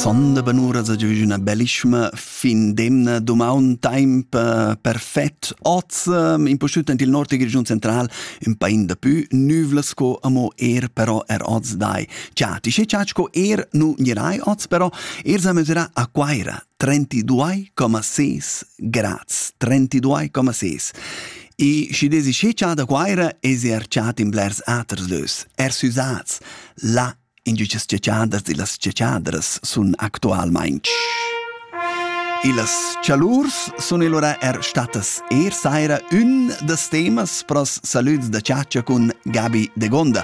Sonda benura sa giuvi üna bellischma fin demna dumaun temp eh, perfet. Oz eh, impustüt in il nord dil Grischun central ün pain da pü nüvla sco amo er però er oz dai. Cha ti sche chat sco er nu girai oz però er sa mesura a Quaira 32,6 grads 32,6 E si desi che da Quaira es er chat in blers aters lös, er süsats. La Indüchas giagiadas illas giagiadras sun actualmaing sch. Illas chalurs sun illura er stattas eir saira ün da temas pro's salüds da chatscha cun Gabi Degonda.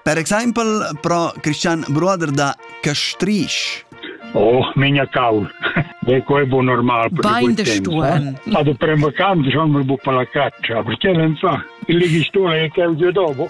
Per exaimpel pro Christian Bruder da Castrisch. Oh, minha cal. De quel bu normal. Bain de stuorn. Ma do prem vacanza schon mi bu pa la caccia, perché non sa? Il ligistore è che il dopo.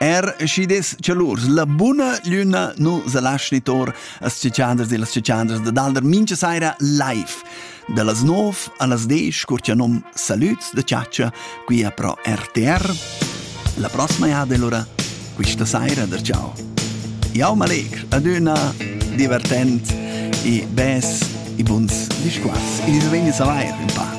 Er schi des chalurs, la buna lüna nu sa laschi tor as ciccianders e las ciccianders da dalder mincha saira live. Da las 9 a las 10 cur cha nom Salüts da Ciaccia qui a Pro RTR. La prossima jada allora, quista saira da ciao. Jau m'allegr, adüna, divertent e bes e buns discuors. E vegni a savair, in pa.